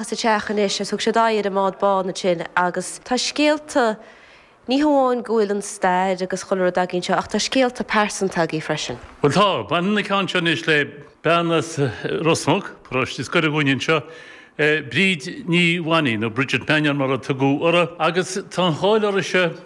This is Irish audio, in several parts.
sa teach anois agus thug siad aghaidh ar an mbád bán ansin agus tá scéalta, ní hamháin go bhfuil an stair agus chuile rud againn seo ach tá scéalta pearsanta againn freisin. Bhuel tá, baineann an ceann seo anois le bean as Rosmuc, paróiste is gaire dhúinn anseo, Bríd Ní Mhainín, nó Bridget Mannion mar a tugadh uirthi agus tá an cháil uirthise,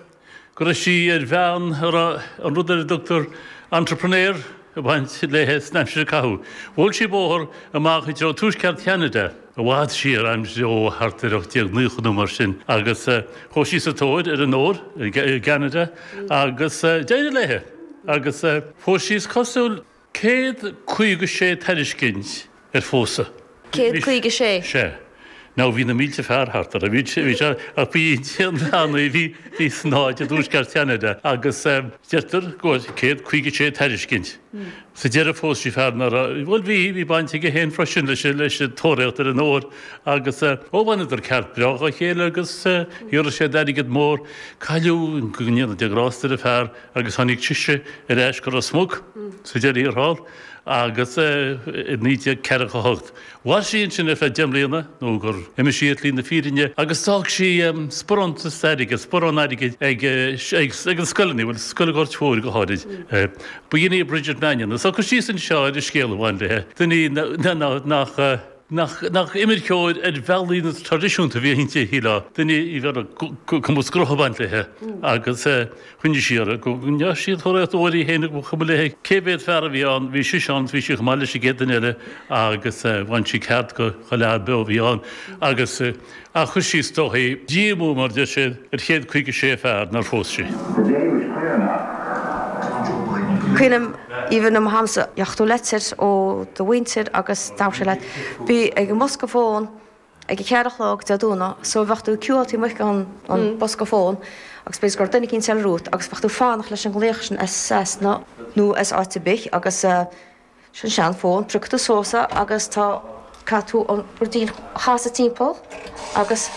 go raibh sí ar bhean a raibh an rud ar a dtugtar entrepreneur ag baint léi san aimsir a caitheadh. Bhuail sí bóthar amach i dtreo tuaisceart Cheanada, i bhfad siar, arm só thart ar 1890 nó mar sin, agus chuaigh sí sa tóir ar an ór i gCeanada agus d'éirigh léi agus fuair sí, is cosúil. Céad caoga sé tairiscint ar phósadh. Céad caoga sé? Sea. Now bhí na mílte fear thart orthu. Bhí sé, bhí sé, ach ba í Dia an bhean í. Bhí, bhí san áit i dtuaisceart Cheanada agus deirtear go bhfuil céad caoga sé tairiscint. Sa deireadh phós sí fear a raibh, bhuel bhí, bhí baint aige féin freisin leis, leis an tóraíocht ar an ór agus, ó bhaineadar ceart breá dhá chéile agus rinne sí airgead mór. Cailleadh i nganfhios do grásta ar an bhfear. agus tháinig sise ar ais go Ros Muc sa deireadh thiar thall agus i 1948 mhair sí ansin ar feadh deich mbliana nó gur imigh sí ar shlí na fírinne agus d'fhág sí sparán airgid, sparán airgid ag na scoileanna, bhuel Scoil an Ghoirt Mhóir go háirid. B'in í Bridget Mannion. So tá cur síos anseo ar an scéal a bhain léi, duine nach. Nach imirceoir ar bhealaí traidisiúnta a bhí inti, a shíleá, duine a raibh cumas grutha ag baint léi agus a choinnigh sí uirthi go ndeachaigh sí ag tabhairt uirthi féin ba chuma léi cé mhéad fear a bhí ann, bhí sise ann is bhí sí chomh maith leis an gcéad duine eile agus bhain sí ceart de chuile dhuine beo a bhí ann agus is dóichí díomú mar deir sé ar chéad 56 fear nár phós sí. Caoinim aoibhinn mo shamsa ach do litir ó do mhuintir agus déarfaidís leat a bheith ag an bosca fón ag a ceathair a chlog Dé Domhnaigh so bheadh tú queueáil taobh amuigh den bosca fón agus b'fhéidir gur duine eicínt eile romhat agus bheadh tú fanacht leis an nglaoch sin as as nó nó as áit ar bith agus Sin sean fón piocann tú suas é agus tá caithfidh tú an dial a chasadh timpeall agus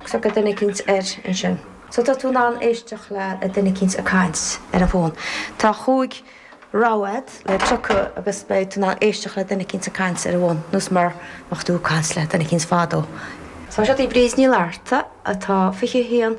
tá duine eicínt air ansin. So tá tú in ann éisteacht le duine eicínt ag caint ar an bhfón. Tá chúig rogha le piocadh agus beidh tú in ann éisteacht le duine eicínt ag caint ar an bhfón nós mar a bheadh tú ag caint le duine eicínt fadó. So seo é Bríd Ní Fhlatharta atá 21.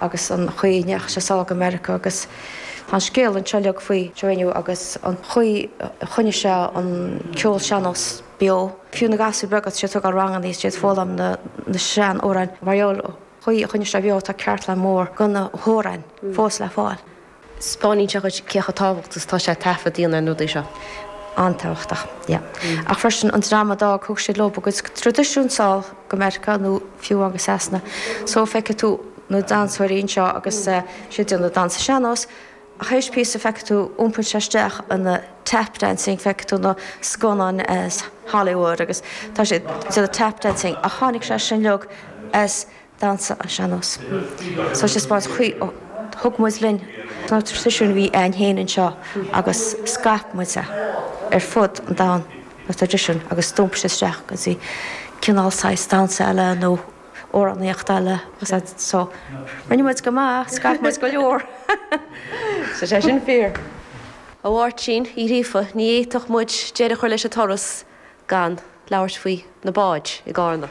agus an chaoi a ndeachaigh sé sall go Meiriceá agus tá an scéal anseo uilig faoi Joe Éinniú agus an chaoi a choinnigh sé an ceol sean-nós beo. Fiú na gasúir beaga atá siad ag tógáil ranganna is iad foghlaim na sean-amhráin. Mar gheall an chaoi a choinnigh sé beo tá cartlann mór dhá chuid amhráin fós le fáil. Spáiníonn sé dhuit cé chomh tábhachtach is atá sé taifead a dhéanamh ar na rudaí seo. An-tábhachtach, yeah. Ach freisin, an dream a d'fhág, thug siad leo a gcuid traidisiún sall go Meiriceá nó fiú amháin go Sasana. So, feicfidh tú na damhsóirí anseo agus siad ag déanamh damhsa sean-nós, ach théis píosa feicfidh tú, iompaíonn sé isteach ina tap dancing, feicfidh tú na scannáin as Hollywood agus tá siad ag déanamh tap dancing ach tháinig sé sin uilig as. damhsa ar an sean-nós. So, 'spáineann sé an chaoi a thug muid linn na traidisiúin a bhí againn féin anseo agus scaip muid é ar fud an domhain, na traidisiúin, agus d'iompaigh sé isteach go dtí cineál saghas damhsa eile nó amhránaíocht eile agus sin. So, rinne muid go maith, scaip muid go leor. Is fíor sin. A Mháirtín Uí Ghríofa, ní fhéadfadh muid deireadh a chur leis an turas gan labhairt faoi na báid i gCarna.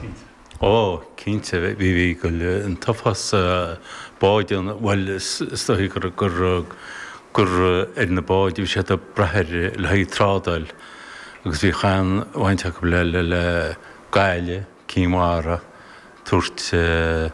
Ó, cinnte, bhí, bhí, an t-uafás báid ann, bhuel, is dóichí gur, gur, gur ar na báid a bhí siad ag brath ar le haghaidh trádáil agus bhíodh an-bhaint acu le, le, le, Gaillimh, Cinn Mhara, tabhairt.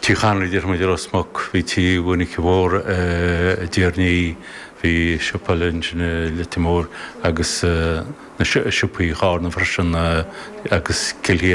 Tigh Chonraí a deir muid i Ros Muc. Bhí Tigh Mhonica Mhór i dTír an Fhia. Bhí siopa i Leitir Móir, agus na siopaí Charna freisin, agus Cill Chiar.